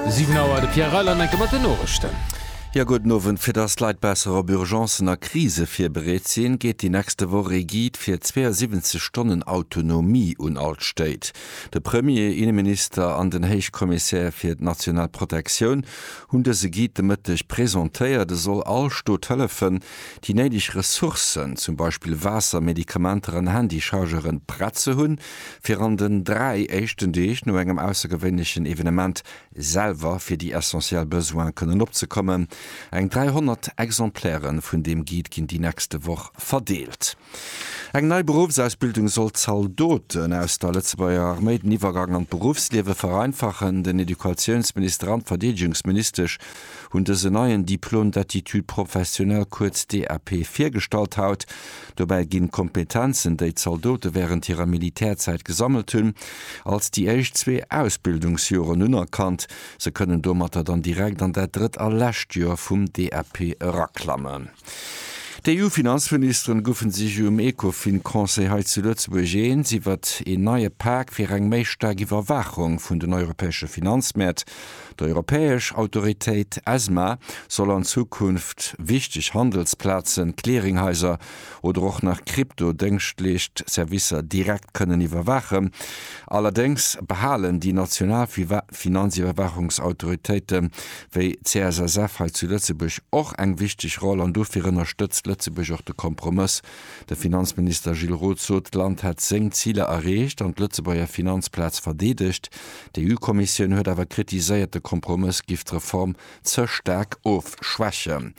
7 Auer, de Pierre Reiland'enke mat den Norischten. Jo, gudden Owend. Fir dass d'Leit besser op Urgencen a Krise virbereet sinn, geet déi nächste Woch ee Guide fir 72 Stonnen Autonomie un all d'Stéit. De Premier, Inneminister an den Héichkommissär fir d'national Protektioun hunn dëse Guide de Mëtteg presentéiert. E soll all Stot hëllefen, déi néideg Ressourcen, zum Beispill Waasser, Medikamenter an Handychargeren, prett ze hunn. fir an den dräi éischten Deeg no engem aussergewéinlechen Evenement selwer fir déi essentiell Besoine kënnen opzekommen. Eng 300 Exemplaire vun deem Guide ginn déi nächste Woch verdeelt. Eng nei Beruffsausbildung soll d'Zaldoten aus der Lëtzebuerger Arméi den Iwwergang an d'Beruffsliewe vereinfachen. Den Educatiounsminister an d'Verdeedegungsministesch hunn dësen neien Diplôme d'aptitude professionnelle, kuerz DAP, virgestallt haut. Dobäi ginn d'Kompetenzen, déi d'Zaldote wärend hirer Militärzäit gesammelt hunn, als déi éischt zwee Ausbildungsjoren unerkannt. Se kënnen domatter dann direkt an dat drëtt a lescht Joer vum DAP eraklammen. D'EU-Finanzministeren goufen sech um Ecofin-Conseil hei zu Lëtzebuerg eens iwwert een neie Pak fir eng méi staark Iwwerwaachung vun den europäesche Finanzmäert. D'europäesch Autoritéit ESMA soll an Zukunft wichteg Handelsplazen, Clearinghaiser oder och nach Krypto-Déngschtleescht Servicer direkt kënnen iwwerwaachen. Allerdéngs behalen déi national Finanziwwerwaachungsautoritéite wéi d'CSSF hei zu Lëtzebuerg och eng wichteg Roll an dofir ënnerstëtzt Lëtzebuerg och de Kompromëss. De Finanzminister Gilles Roth sot, d'Land hätt seng Ziler erreecht an d'Lëtzebuerger Finanzplaz verdeedegt, D'EU-Kommissioun huet awer kritiséiert, de Kompromëss giff d'Reform ze staark ofschwächen.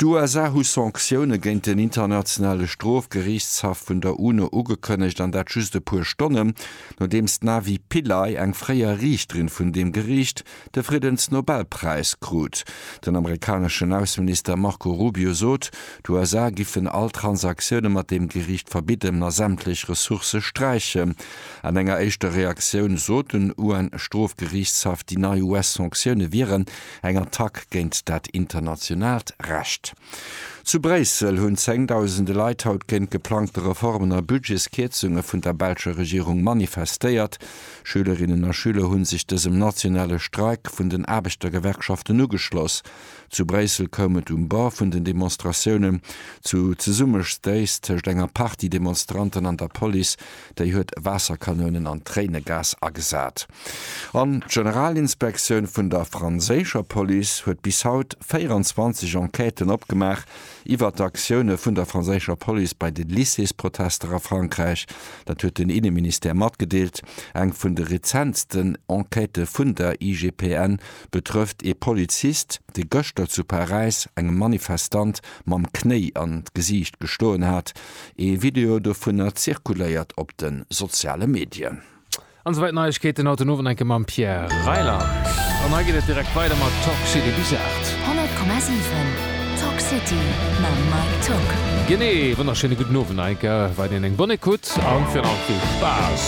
D'USA hu Sanktioune géint den Internationale Strofgeriichtshaff vun der UNO ugekënnegt, an dat just e puer Stonnen, nodeems d'Navi Pillay, eng fréier Riichterin vun deem Geriicht, de Friddensnobelpräis krut. Den amerikaneschen Ausseminister Marco Rubio sot, d'USA giffen all Transaktioune mat deem Geriicht verbidden a sämtlech Ressourcë sträichen. An enger éischter Reaktioun sot den UN-Strofgeriichtshaff, déi nei US-Sanktioune wieren eng Attack géint dat internationaalt Recht. Zu Bréissel hunn zéngdausende Leit haut géint geplangte Reformen a Budgetskierzunge vun der belscher Regierung manifestéiert. Schülerinnen a Schüler hu sech dësem nationale Streik vun den Aarbechtergewerkschaften ugeschloss. Zu Bréissel koum et um Bord vun den Demonstratiounen zu Zesummestéiss tëscht enger Partie Demonstranten an der Police, déi huet Waasserkanounen an Tréinegas agesat. An d'Generalinspektioun vun der franséischer Police huet bis haut 24 Enquêten opgemaach iwwert d'Aktioune vun der franséischer Police bei de Lycéesprotester a Frankräich. Dat huet den Inneministère matgedeelt. Eng vun de rezentsten Enquêtë vun der IGPN betrëfft ee Polizist, dee gëschter zu Paräis engem Manifestant mam Knéi an d'Gesiicht gestoen hat. Ee Video dovunner zirkuléiert op de soziale Medien. An souwäit Neiegkeeten haut den Owend enke mam Pierre Reyland. An hei geet et direkt weider mat Talk City bis 8. 100,7 Talk City mam Mike Tocq. Genee, wonnerschéine gudden Owend, enke weiderhin eng Bonne Ecoute an virun allem vill Spaass.